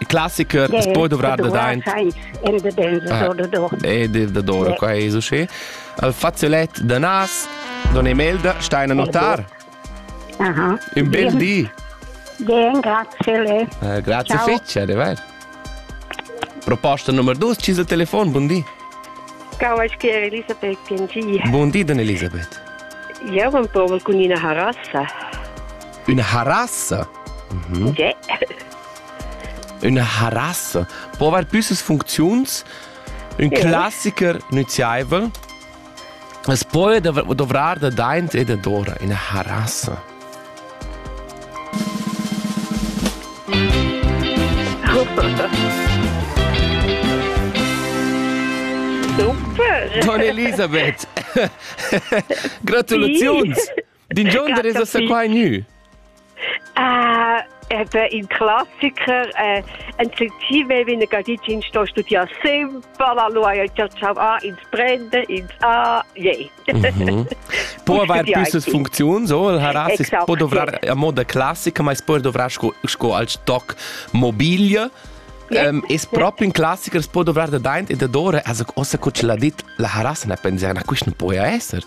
Il classicher yeah, poi dovrar da daint. Era da benzodor da dor. E da dor, qua è so schön. Al faziolet da nas, don Emelda Steiner Notar. Aha. Un bel di. Bien, grazie le. Uh, grazie Ciao. fece, de ver. Proposta numero 2, ci sa telefon, buon di. Ciao, aș chiare Elisabeth PNG. Buon di, don Elisabeth. Eu am povel con una harassa. Üna harassa? Mhm. Okay. Üna harassa po avair püssas funcziuns. Ün okay. classiker nüziaivel es poi dovrar da daint e da dora üna harassa. Super! Don Elisabeth, gratulaziuns! Din gion der es da qua gnü? Ah, Ebe in classiker eh, en sentime vine gadicin sto studiar sempre la loyalty ciao a ins prende ins a je mhm. po avair pisses funziun so il harasis exact, po dovrar yeah. a moda classica ma es poi dovrar sco, sco al stock mobilia Um, es proprio in classiker può dovrare da daint e da dore also cosa che l'ha dit la harasa ne pensa na questo non può essere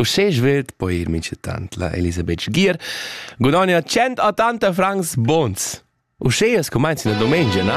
Uschè svelt po ir minchatant la Elisabeth Sgier gudogna tschient a tanta francs bons. Uschè as cumainza la dumengia, na?